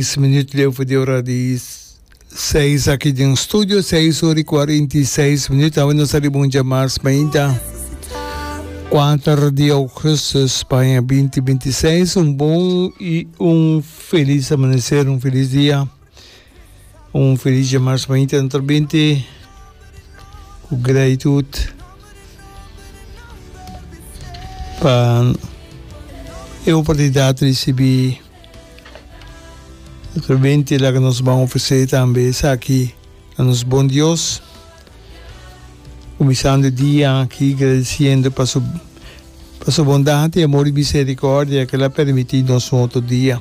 Dis minüt leu for di ora di seis aki den studio, seis ora i kuarenta i seis minüt. Awor nos ta riba un dja mas mainta kuater di augustu Spaña binti binti i seis. Un bon i un felis amaneser, un felis dia, un felis dja mas mainta no ta binti ku gratitud pa e oportunidat di risibi. Otro bente laga nos ban ofresé tambe esaki na nos bon Dios, kuminsando e dia aki gradisiendo pa su pa su bondad i amor i misericordia ku el a permití nos un otro dia.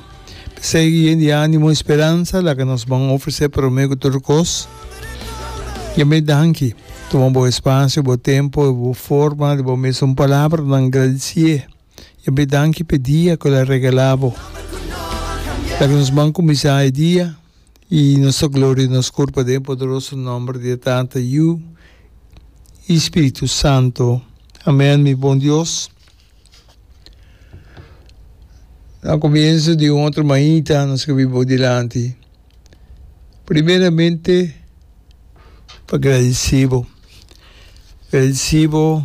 P'esei yen di ánimo i speransa laga nos ban ofresé promé ku tur kos Yahweh danki. Tuma bo espacio, bo tempo i bo forma di bo mes un palabranan gradisié. Ya be danki p'e dia cu el a regalá bo. Ta cu nos ban cuminsá e dia y nos ta gloria nos cor paden e poderoso nomber di e Tata, Yu y Spiritu Santo. Amen, mi bon Dios. Na comienso di un otro mainta nos a biba bo dilanti. Primeramente pa gradisí bo, gradisí bo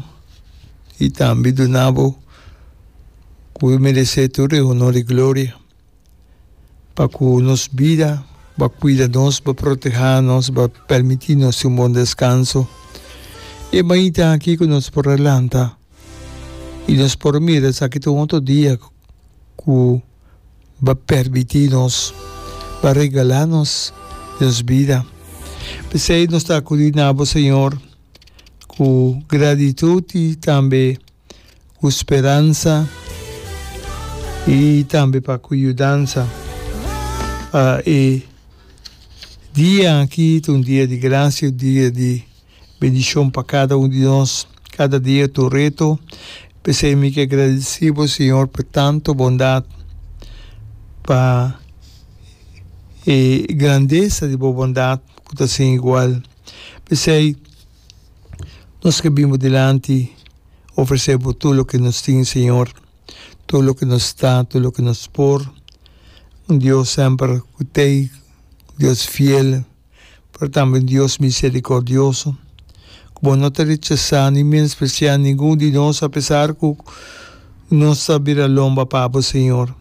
i tambe duna bo ku bo meresé tur e honor i gloria pa ku nos bida bo a kuida nos, bo a protehá nos, bo a permití nos tin un bon deskanso. E mainta aki ku nos por a lanta i nos por mira esaki ta un otro dia ku. ba permití nos, ba regalá nos nos bida. P'esei nos ta akudí na bo, Señor, ku gratitut i tambe ku speransa i tambe pa ku yudansa pa e dia aki ta un dia di grasia, un dia di. Bendishon pa kada un di nos, kada dia ta un reto, p'esei mi ke gradisí Bo, Señor, pa e tantu bondat, pa e grandesa di Bo bondat ku ta sin igual. P'esei nos ke bin Bo dilanti ofresé Bo tur loke nos tin, Señor, tur loke nos ta, tur loke nos por, un Dios semper ku t'ei, un Dios fiel. pero tambe un Dios misericordioso, cu bo no ta rechasa ni menosprecia ningun di nos apesar cu nos ta bira lomba pa bo, Señor.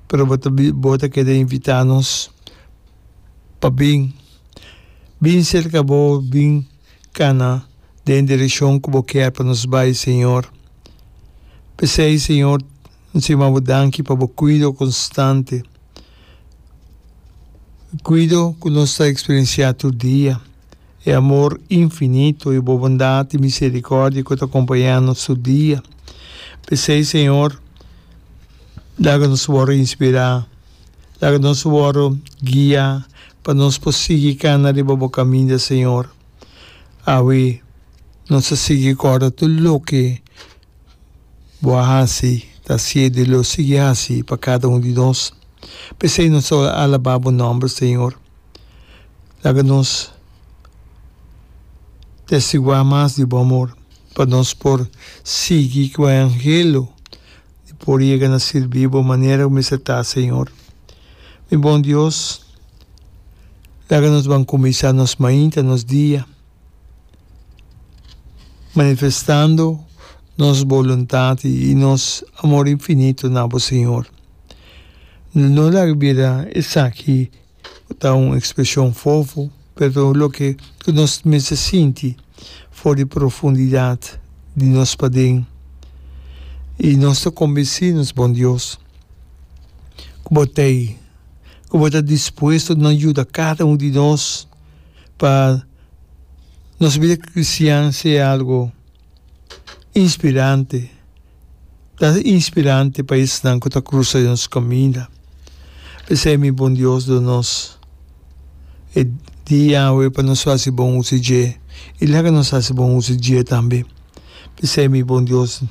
Pero bo ta bo ta keda invita nos pa bin. Bin cerca bo, bin cana den direccion cu bo kier pa nos bay, Señor. P'esey, Señor, mi sirbi bo danki pa bo cuido constante. Kuido ku nos ta eksperensiá tur dia, e amor infinito, e bo bondat i miserikòrdia ku ta kompañá nos tur dia. P'esei, Señor, laga nos wòrdu inspirá, laga nos wòrdu guiá pa nos por sigui kana riba bo kaminda, Señor. Awe nos ta sigui kòrda tur loke. Bo a hasi, ta siede lo sigui hasi pa kada un di nos. P'esei nos ta alabá bo nòmber, Señor. Laga nos testiguá mas di bo amor, pa nos por sigui ku e anhelo di por yega na sirbi bo manera ku mester ta, Señor. Mi bon Dios, laga nos ban kuminsá nos mainta, nos dia. Manifestando nos boluntad i nos amor infinito na bo, Señor. No laga bira esaki ta un expresion fofo, pero loke ku nos mester sinti for di profundidad di nos paden. I nos ta kombinsí nos Bon Dios ku bo t'ei, ku bo ta dispuesto na yuda kada un di nos. pa nos bida cristian sea algo inspirante, ta inspirante pa esnan cu ta cruza den nos caminda. P'esey mi bon Dios duna nos e dia awe pa nos haci bon uso dje y laga nos haci bon uso dje tambe. P'esey mi bon Dios, mi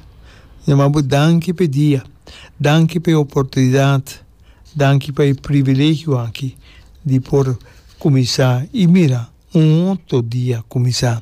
ta manda bo danki p'e dia, danki p'e oportunidad. Danki pa e privilegio aki di por kuminsá i mira un otro dia kuminsá.